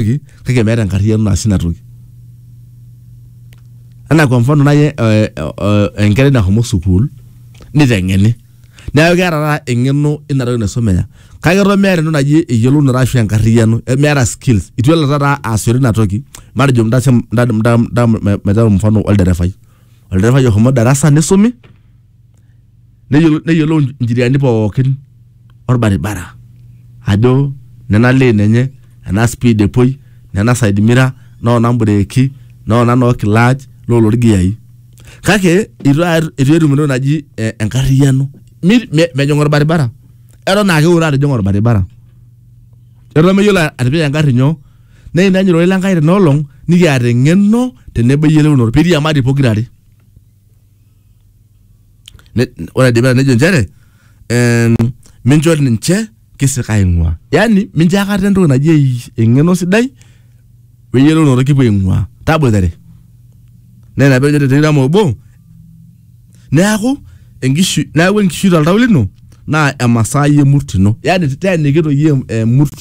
toki kake meeta enkarriyiano naasie ina toki anaa kwa mfano naai eh, eh, eh, enkerai nahomo sukuul niteng'eni neeku keeta taata eng'eno ina toki naisomea kake eton meeta entoki naji eyiolounoto ashu enkarriyiano eh, meeta skills itu elo taata aasishore ina toki matejo mtase- mta- mta- mta- metaa mfano olderefai olderefai ohomo darasa nisumi neyiolou, neyiolou ncheriani pookin orbaribara ajo nena lane enye ena speed epuoi nena side mirror noona mbureeki noona noo clutch lolo irgiyai kake itu a- itu etum entoki naji eh, enkarriyiano Mi- me- mejing orbaribara eton ake eure atijing'a orbaribara eton meyiolo atipika engarri nyoo naa ina enyorrata ile Enkai tena olong nikiata eng'eno tenebo eyiolounoto piiriamari pokirare. Ne- ore aidipa nejo nchere em, mincho ninche kisika aing'ua yaani mincho akata entoki naji ei- eng'eno sidai weyiolonoto kipuo aing'ua taboitare naa ina pejo tetirama obo neaku enkishui neaku enkishui toltau lino naa emasai emurt ino yaani teeniki toi em- emurt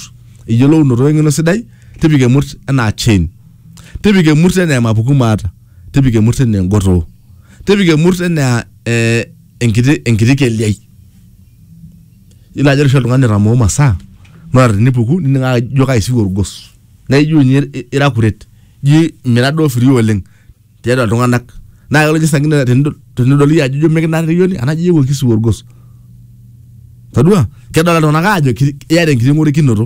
eyiolounoto weng'eno sidai tipika emurt enaa chain tipika emurt enaa emapuku maata tipika emurt enaa engotoo tipika emurt enaa eh, enkiti enkiti keliai yiolo ajo ore oshi oltung'ani otamoo masaa naa tenipuku nining ake ijo kaisiu orgos naa ijo ninye i- ira akuret ijo mira duo free oleng tiatua iltung'anak naa kelo ninye saa ingine tenidol tenidol iyie ajo ijo mikinaarriyioni anaa ijo iyewuo kisiu orgos todua kedolta iltung'anak aajo ki- iyata enkiti ng'orikinoto.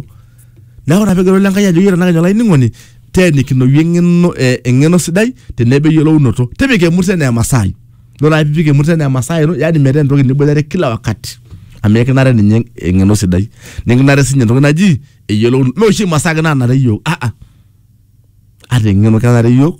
Neeku ina peejo Enkai ajoki ore tenakenya olainining'oni teenikinoyu eng'eno eh, eng'eno sidai tenebo eyiolounoto. Tipika emurt enaa emasaa ai. Ore ake piipik emurt enaa emasaa ino yaani metaa entoki niboitare kila wakati amu ekinare ninye eng'eno sidai nekinare siinye entoki naji eyiolounoto. Mee oshi imasaa ake naanare iyiok aa ata eng'eno kenare iyiok.